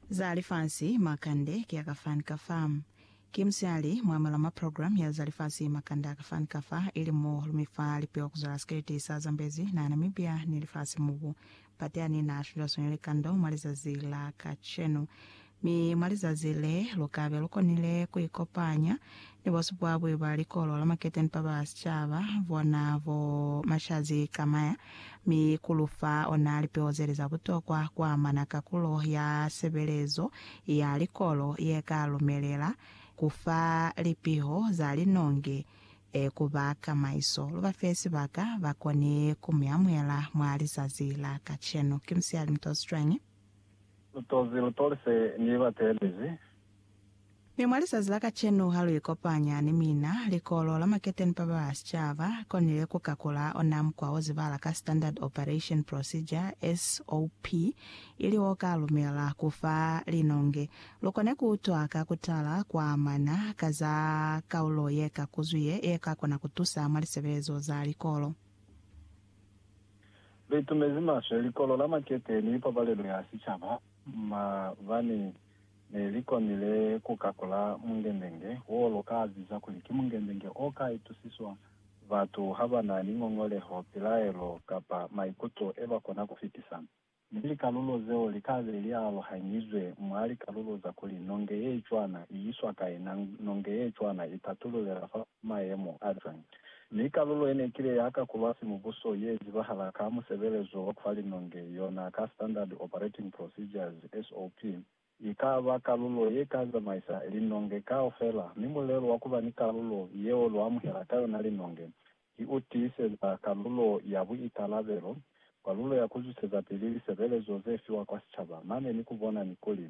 Za Lifasi Makande ki a ka fa ni ka fa. Ki musihali mwa malama program ya za lifasi makande a ka fa ni ka fa, ili mo lumi fa lipeo kuzwela sikeleti sa zambezi na Namibia ni lifasi mubu. Pateani na shwilwashwile likando mwa lizazi la kacenu. Mi mwa lizazi le, lukabe lukonile kuikopanya ni bosupwabwi ba likolo la maketeni ba ba sicaba, bona bo Mashazi Camaya, mi kulufa ona lipeo zeli za butokwa kuamana kakulo ya sebelezo ya likolo yeka lumelela kufa lipiho za linongi ku ba kamaiso. Lubafe sibaka, bakoni kumuamuela mwa lizazi la kacenu. Ki musiali mutozwi cwañi? Lutozi lu tolise ni ba teelezi. Mi mwa lizazi la kacenu ha lu ikopanya ni mina, Likolo la Maketeni pa ba Sicaba li konile ku kakula ona mukwa wo zibala ka Standard Operation Procedure, SOP, ili wo ka lumela ku fa linonge lu kone ku utwa ka ku tala kwa amana ka za kaulo ye ka kuzwi ye ka kona ku tusa mwa lisebelezo za likolo. Liitumezi maswe likolo la makete ni pabalelo ya sicaba mabani ne li konile ku kakula mungendenge wo lu ka biza kuli ki mungendenge o ka itusiswa batu ha ba na ni ngongoleho, pilaelo, kapa maikuto e ba kona ku fitisa. mi likalulo zeo li ka be li aluhanyizwe mwa likalulo za kuli nonge ye cwana i iswa kai na nonge ye cwana i patululela fa mayemo a cwañi. Mi kalulo ye ne kile ya kakulwa simubuso ye zibahala ka musebelezo wa ku fa linonge, yona ka Standard Operating Procedures, SOP, Yi ka ba kalulo ye ka zamaisa linonge kaufela, mi mulelo wa ku ba ni kalulo yeo lu amuhela ka yona linonge ki u tiiseza kalulo ya buikalabelo, kalulo ya ku zwisezapili lisebelezo ze fiwa kwa sicaba, mane ni ku bona ni kuli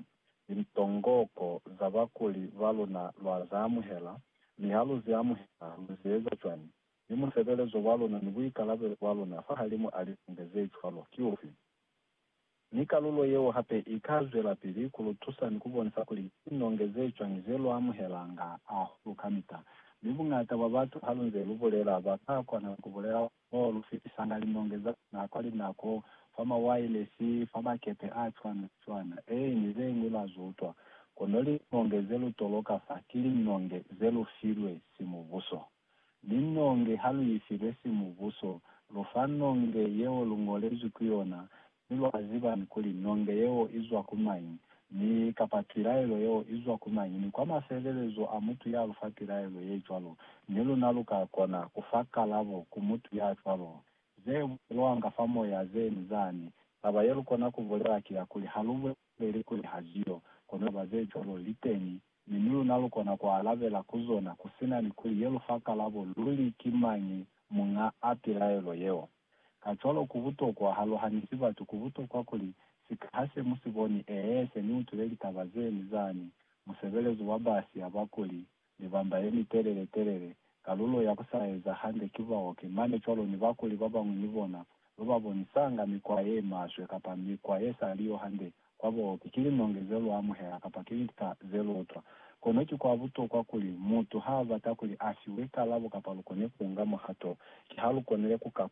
lintongoko za bakuli ba luna lwa za amuhela, mi ha lu zi amuhela, lu zi eza cwañi, mi musebelezo wa luna ni buikalabelo bwa luna fahalimu a linonge ze cwalo ki ufi. Mi kalulo yeo hape i ka zwelapili ku lu tusa ni ku bonisa kuli ki linonge ze cwañi ze lu amuhelanga hahulu kamita. Mi buñata bwa batu ha lu nze lu bulela, ba ka kona ku bulela mo lu fitisanga linonge za luna kwa linako, fa mawailesi, fa makepe a cwana-cwana, ee, ni ze ñwi lwa zwi utwa. Kono linonge ze lu toloka fa ki linonge ze lu filwe si Mubuso. Mi nonge ha lu ifilwe simubuso, lu fa nonge yeo lu ngolezwi ku yona, mi lwa zibañi kuli nonge yeo i zwa ku mañi, mi kapa pilaelo yeo i zwa ku mañi? Ni kwa mafelelezo a mutu ya lu fa pilaelo ye cwalo, ni luna lu ka kona ku fa kalabo ku mutu ya cwalo. Ze bulelwanga fa moya ze ni zani. Taba ye lu kona ku bulela ki ya kuli ha lu buleli peli kuli ha si yo, kono ba ze cwalo li teni, mi ni luna lu kona ku alabela ku zona ku si na ni ku ye lu fa kalabo luli ki mañi muñ'a a pilaelo yeo. Kacwalo ku butokwa, ha lu hanisi batu, ku butokwa kuli, sika ha se mu si boni, ee, se ni utwile litaba ze ni zani, musebelezi wa ba siya ba kuli, Mibamba ye mitelele-telele, Kalulo ya ku sa eza hande ki baoki mane cwalo ni bakuli ba bañwi ni bona ba ba bonisanga mikwa ye maswe kapa mikwa ye sa li yo hande kwa baoki ki linonge ze lu amuhela kapa ki lika ze lu utwa. Kono ki kwa butokwa kuli mutu ha a bata kuli a fiwe kalabo kapa lu kone ku nga muhato, ki ha lu konile ku ka